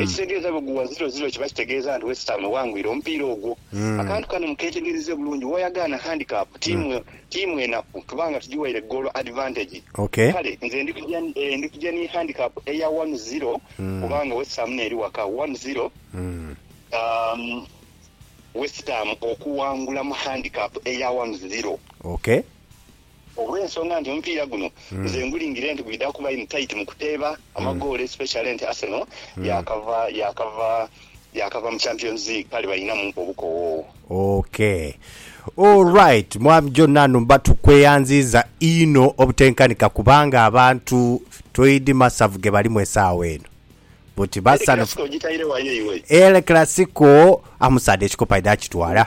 Ekitegeeza bwe gugwa ziro ziro kiba kitegeeza nti West Ham ewangwire omupiira ogwo. Akantu kano mukeetegereze bulungi, w'oyagaana handicap, tiimu enaku tuba nga tugiwaire goolo advantage. Kale nze ndi kuja ni handicap eya wanu ziro kubanga West Ham n'eri waka. Wanu ziro West Ham okuwangula mu handicap eya wanu ziro. Olw'ensonga nti omupiira guno nze ngulingire nti gwidha kuba in tight mu kuteeba amagoolo especially nti Arsenal yaakava yaakava yaakava mu Champions League kale balinamu obukowoowo. Ok. Alright Mwami Jonan Mba tukweyanziiza inho obutenkanika kubanga abantu toidhi masavu ge balimu esaawa eno. But El basanhufu. Clasico ogitaire wa yo iwe? El Clasico amusaadha ekikopo aidha akitwala.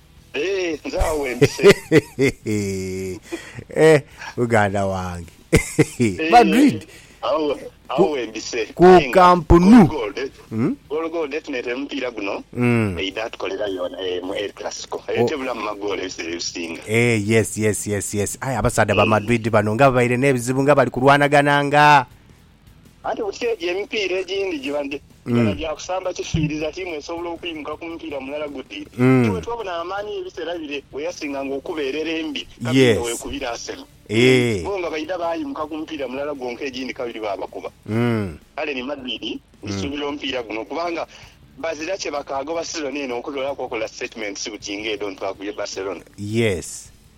Eeh nze agho wembise. Eh muganda wange Madrid ku kampnu. Eeh yes yes yes yes aye abasaadha ba Madrid bano nga babaire nebizibu nga bali kulwanagana nga Anti buti egyo emipiira egindi giba gya gya kusamba kifiiriza tiimu esobola okwimuka ku mupiira mulala guti. Aye bwetwabona amaani y'ebiseera bire bweyasinganga okuba erere embi kabiri nga wekubira Arsenal. Bo nga baidha baayimuka ku mupiira mulala gwonka egindi kabiri baabakuba. Kale ni Madrid ndisuubira omupiira guno kubanga bazira kyebakaagoba sizoni eno okuloolaku okola sitatimenti buti ng'edho nti twakubye Barcelona.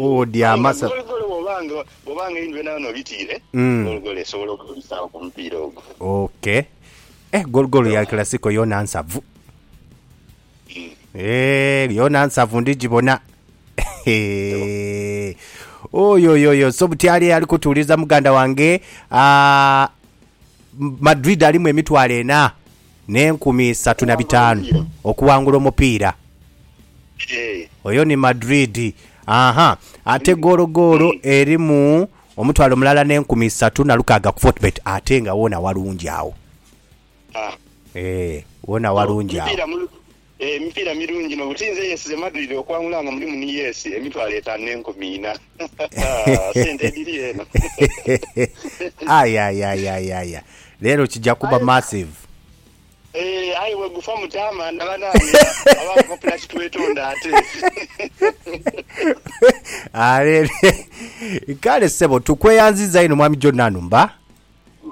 Odyama sa. Aye nga gologole bw'oba nga einhwe nawe n'obitiire, gologole esobola okubisaawo ku mupiira ogwo. Ok. Eh, gologole ya Classico yoona nsavu. Eh, yoona nsavu ndigibona. Hehe. Oyoyoyo, so buti ali ali kutuuliza muganda wange. Ah, Madrid alimu emitwalo ena. n'enkumi isatu na bitaanu okuwangula omupiira. Oyo ni Madrid. Aha, ate goolo goolo erimu omutwalo mulala n'enkumi isatu na lukaaga ku Fortebet ate nga woona walungi agho. Eeh, woona walungi agho. Emipiira mirungi inho. Buti nze eyesize Madrid okwangula nga mulimu ni Yesi emitwalo etaanu n'enkumi ina. Haa, sente edhiri eno! Ayayayayaya! Leero kija kuba massive. Eeh, aye bwegufa mutaamanda banange! Abaawo popula kitwetonda ate. Haa, leero. Kale ssebo, tukweyanziza inho Mwami John Nanumba.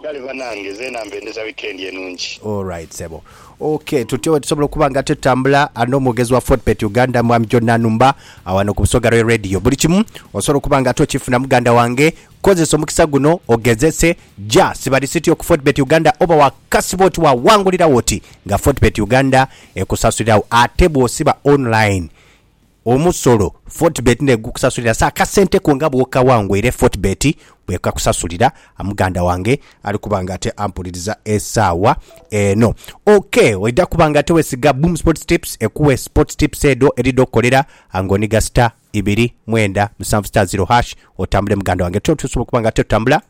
Kale banange zeena mbendeza weekend enungi. Alright sebo ok tutyo wetusobola okuba nga tutambula ano omwogezi wa Fordpet Uganda mwami John Nanumba awano ku busoga lwe radio buli kimu osobola okuba nga tokifuna muganda wange kozesa omukisa guno ogezese ja siba lisiti yo ku Fordpet Uganda oba wakasiba oti wawangulirawo oti nga Fordpet Uganda ekusasulirawo ate bwosiba online Omusolo Fortebet n'egukusasulira sa akasente ko nga bw'okawa ngu era Fortebet bw'ekakusasulira. Muganda wange ali kuba nga ate ampuliriza esaawa eno. OK, oidha kuba nga ate wesiga Boom Sports Tips ekuwe Sports Tips edho edhidha okukolera nga oniga star ibiri mwenda musanvu star ziro hash otambule muganda wange. Tyo osobola okuba nga ate otambula.